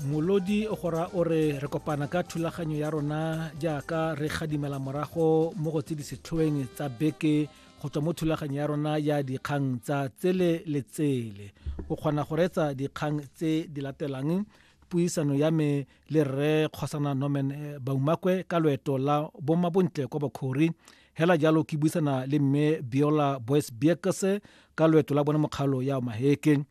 molodi o gora o re re kopana ka thulaganyo ya rona jaaka re gadimela morago mo go tse di setlhoeng tsa beke go tswa mo thulaganyo ya rona ya dikgang tsa tsele le tsele o kgona go reetsa dikgang tse di latelang puisano ya me le rre kgosana norman eh, baumakwe ka loeto la bomabontle kwa bokhori hela jalo ke buisana le mme biola boys biekese ka loeto la bone mokgalo ya maheke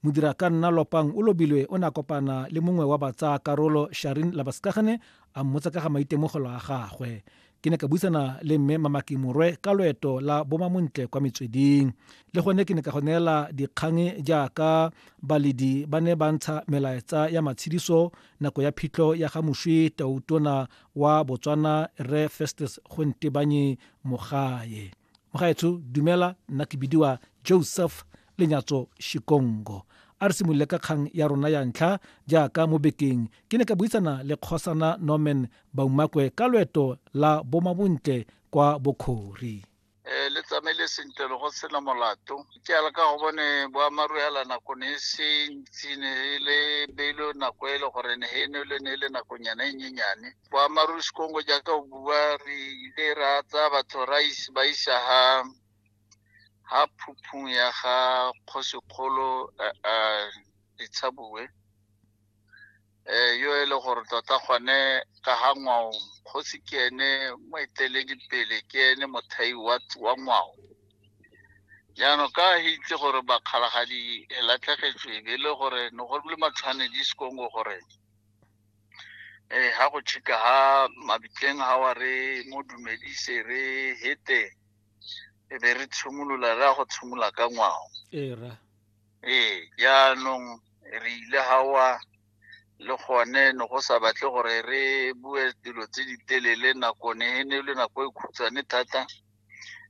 modirakanna lopang o lobilwe o ne a kopana le mongwe wa batsaa karolo sharin labaskagane a mmotsa ka ga maitemogelo a gagwe ke ne ka buisana le mme mamaki morwe ka loeto la bomamontle kwa metsweding le gone ke ne ka go neela dikgang jaaka baledi ba ne ba ntsha melaetsa ya matshediso nako ya phitlho ya ga moswi tautona wa botswana re festus gontebanye mogae mogaetsho dumela nna ke bidiwa joseph lenyatso shikongo a re simolole ka kgang ya rona ya ntlha jaaka mo bekeng ke ne ka buisana le kgosana norman baumakwe ka loeto la bomabontle kwa bokhori um le tsamaile sentle le go sena molato ke ala ka go bone boamaru ala nako ne e se ntsi ne e le beilo nako e le gore ne e ne le ne e le nakonyana e nyenyane boammaaruri sekongo jaaka o bua re ile ra tsaya batho ra ba isa ha ha phuphung ya ga kgosikgolo ditshabue um yo e le gore tota gone ka ga ngwao kgosi ke ene moeteledipele ke ene mothai wa ngwao jaanong ka he itse gore bakgalagadi e latlhegetswe e be e le gore ne go le matshwanedi sekongo gore eh ha go chika ha mabitleng ha wa re mo dumedise re hete e be re tshimolola re a go tshimola ka ngwao ee ra ee jaanong re ile hawa le gone ne go sa batle gore re bue dilo tse di telele nako ne e ne e le nako e khutshwane thata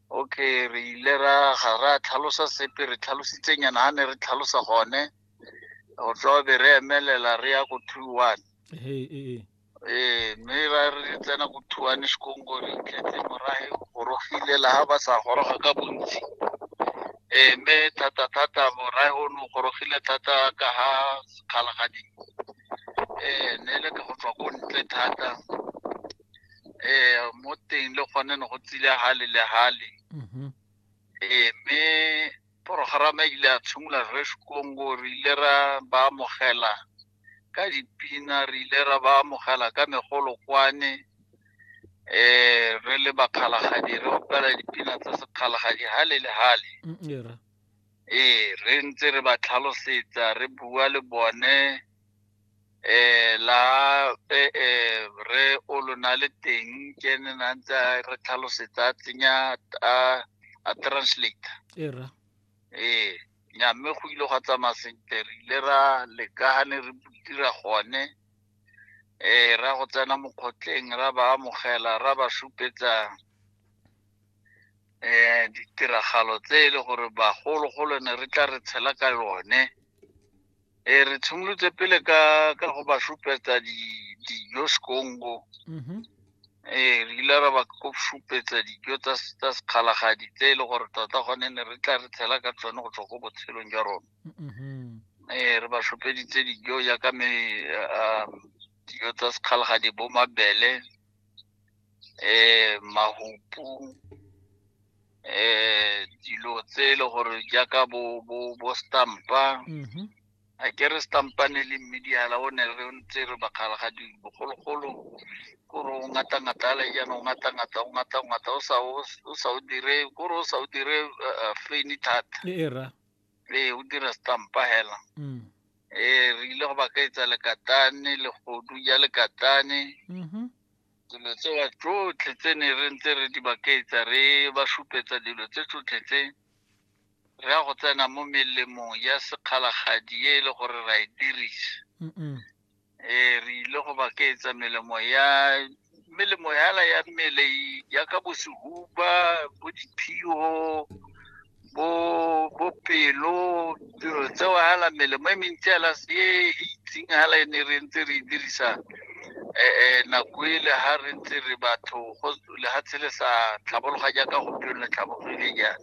okay re ile ra ga ra tlhalosa sepe re tlhalositsenyana ha ne re tlhalosa gone go tswa be re emelela re ya go two one ee ee ee mme ra re tsena go two one sekongo re itletse morage gorogile la ga ba sa goroga ka bontsi ee mme thata thata morage o ne o gorogile thata ka ga sekgalagadi ee ne le ka go tswa ko ntle thata ee mo teng le gone ne go tsile gale le gale mhm ee mme Porogerama e ile ya tshimolola re Kongo re ile ra ba amogela ka dipina re ile ra ba amogela ka megolokwane eh re le bakgalagadi re opela dipina tsa sekgalagadi hale le hale mm, ee re ntse re ba tlhalosetsa re bua le bone eh la eh, eh re o lona le teng ke ne na ntse a re tlhalosetsa a tsenya a a translate era eh nya mme go ile gwa tsamaya sentle re ile ra leka ga ne re dira gone eh ra go tsena mokgotleng ra ba amogela ra ba supetsa eh ditiragalo tse e le gore bagologolo ne re tla re tshela ka yone Eh, re tshimolotse pele ka ka go ba supetsa di- dijo sekongo Mhm. ee re ile ra ba ko supetsa dijo tsa s- tsa sekgalagadi tse e le gore tota gone ne re tla re tshela ka tsone go tswa ko botshelong jwa rona Mhm. ee re ba supeditse dijo jaaka me um, dijo tsa sekgalagadi bo mabele eh mahupu eh dilo tse e le gore jaaka bo bo bo stampa Mhm. a ke re stampane le mmediala o ne re ntse re bakgala ga di bogologolo kore o ngata ngata ale jaana o ngata ngata o ngata ngata o sa o o sa o dire kore o sa o dire uh, uh, feni thata e e ra ee o dira stampa hela mm. ee re ile go ba ka etsa lekatane legodu ja lekatane mm-hmm. dilo tsewa tsotlhe tse ne re ntse re di bakaetsa re ba supetsa dilo tse tsotlhe tse re ya go tsena mo melemong ya sekgalagadi e e le gore ra e dirisa um re ile go ba keetsa melemo ya melemo yala ya mmele yaka bo sehuba bo diphio bo bo pelo dilo tseo hala melemo e mentsi hala e itseng hala e ne re ntse re e dirisa um nako ele ha re ntse re batho go lehatshe le sa tlhabologa jaaka gompieno le tlhabogile jang